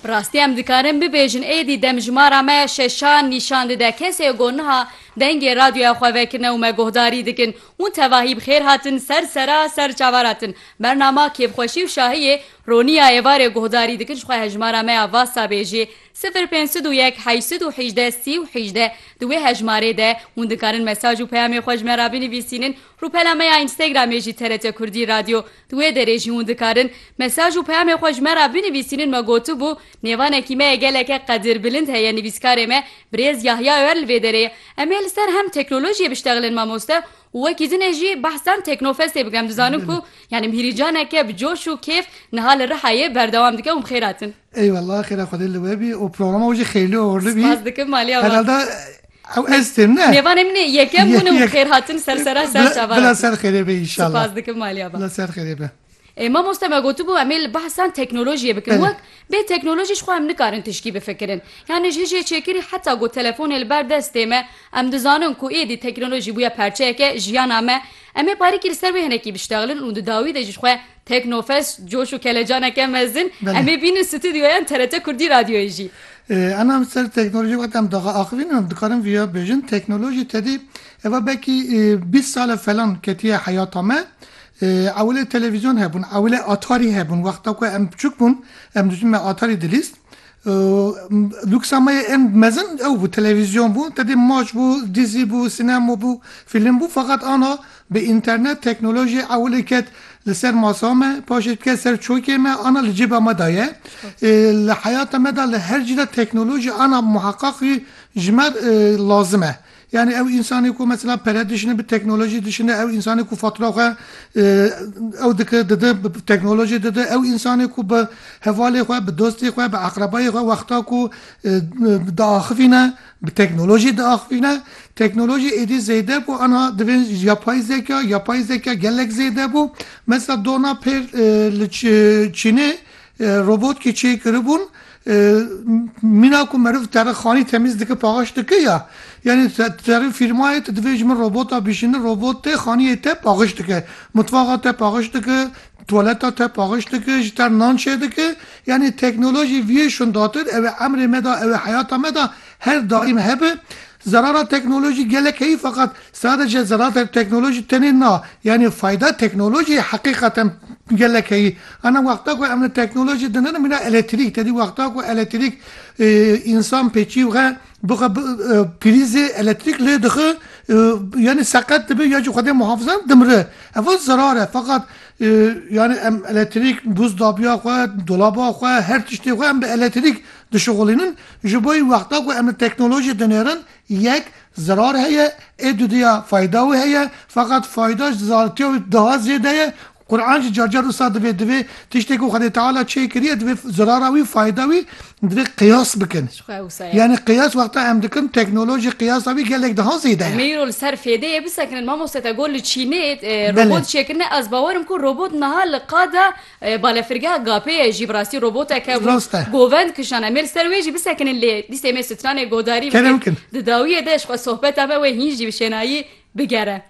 Bi rastî em dikarin bibêjin êdî demjimara me şeşan nîşan dide kesê ku niha dengê radyoya xwe vekirine û me guhdarî dikin hûn tevahî bi xêr hatin ser sera ser çavara tin bernama kêfxweşî û şahiyê Ronî ya êvarê guhdarî dikin ji xwe hejmara me ya vasa bêjê sifir pênc sed û yek heşt sed û hîjdeh sî û hîjdeh di wê hejmarê de hûn dikarin mesaj û peyamê xwe ji me re binivîsînin rûpela me ya Instagramê jî TRT Kurdî Radyo Di wê derê jî hûn dikarin mesaj û peyamê xwe ji me re binivîsînin me gotibû, Nêvanekî me ye geleke qedirbilind heye nivîskarê me Birêz Yahya Öer li vê derê ye. Em ê li ser hem teknolojiyê biştexilin mamoste û wekî dinê jî behsan Teknofestê bikim. Dizanim ku yanî mhîrîcaneke bi coş û kêf niha li Rihayê berdewam dike û bi xêr hatin. Ey wella xêra Xwedê li we bî û programa wê jî xêylê û horlê bî. Spas dikim Malî ava. Herhalde ew ez têm ne? Nêvanê min ê yekem bûn û xêr hatin ser sera ser çavan. Bila ser xêrê be înşallah. Spas dikim Malî ava. Bila ser xêrê be. Mamoste me gotibû em ê li behsan teknolojiyê bikin. Wek bê teknolojî jixwe em nikarin tişkî bifikirin. Yanî ji hijê çêkirî heta ku telefonê li ber destê me em dizanin ku êdî teknolojî bûye parçeyeke jiyana me. Em ê parîkî li ser wê hinekî biştexlin û di dawî de jî xwe Teknofest coş û kelecaneke mezin. Em ê bînin stûdyoya TRT Kurdî Radyoyê jî. Em em ser teknolojî wexta em daxa axivîn û em dikarin vîya bêjin, teknolojî tedî eva belkî bîst sal e falan ketiye heyata me. Ewilê televîzyon hebûn, ewilê atarî hebûn. Wexta ku em biçûk bûn, em dijîn me atarî dilîst. Luksa me yê ên mezin ew bû, televîzyon bû, te dê maç bû, dizî bû, sînema bû, fîlm bû feqet ana bi înternet, teknolojî ewilê ket li ser masa me, paşê diket ser çokê me, ana li cêba me de ye. Li heyata me de li her cî de teknolojî ana muheqeq jî ji me lazim e. Yanî ew însanê ku mesela pere dişine bi teknolojî dişine, ew însanê ku fatura xwe ew dike dide bi teknolojî dide, ew însanê ku bi hevalê xwe, bi dostê xwe, bi eqrebayê xwe wexta ku diaxivîne bi teknolojî diaxivîne. Teknolojî êdî zêde bû aniha divê yapay zeka, yapay zeka gelek zêde bû. Mesela dona pêr li Çînê Robot ki çê kiribûn mîna ku meriv terê xanî temîz dike paxaş dike ya. Yanî terê fîrmayê tu divê ji min robota bîşînî robot tê xaniyê te paxiş dike. Mutfaxa te paxiş dike, tuwaleta te paxiş dike, ji te nan çê dike. Yanî teknolojî viyê şundatir ew ê emrê me de ew ê heyata me de her daîm hebe. Zerara teknolojî gelek heye feqat sadece zerara teknolojî tenê na, yanî fayda teknolojîyê heqîqeten gelek heye. Ana wexta ku em li teknolojî din in mîna eletrîk tedî wexta ku eletrîk însan pê çî we bixwe bi prîzê eletrîk lê dixwe yanî seqet dibe ya jî xwedê muhafize dimire. Ev zerar e feqat yanî em eletrîk bûz dabiya xwe, dolaba xwe, her tiştê xwe em bi eletrîk Dişuxulînin ji bo yê wexta ku em li teknolojiyê dinêrin, yek, zirar heye, ê dudiya fayda wê heye, feqat fayda ji zartiya wê daha zêde ye. Qur'an jî car car wisa divê, divê tiştê ku Xwedê Teala çê kiriye divê zirara wî fayda wî divê qiyas bikin. Ji xwe ya wisa ye. Yanî qiyas wexta em dikin teknolojî qiyasa wî gelek daha zêde ye. Mêro li ser fêdeyê bisekinin mamoste te got li Çînê robot çêkirine ez bawer im ku robot niha li qada Balafirgeha Gapêyê jî bi rastî robotek hebû govend kişand. Em ê li ser wê jî bisekinin lê dîsê me stranê godarî bikin. Di dawiyê de ji xwe sohbeta me wê hîn jî bi şênayî bigere.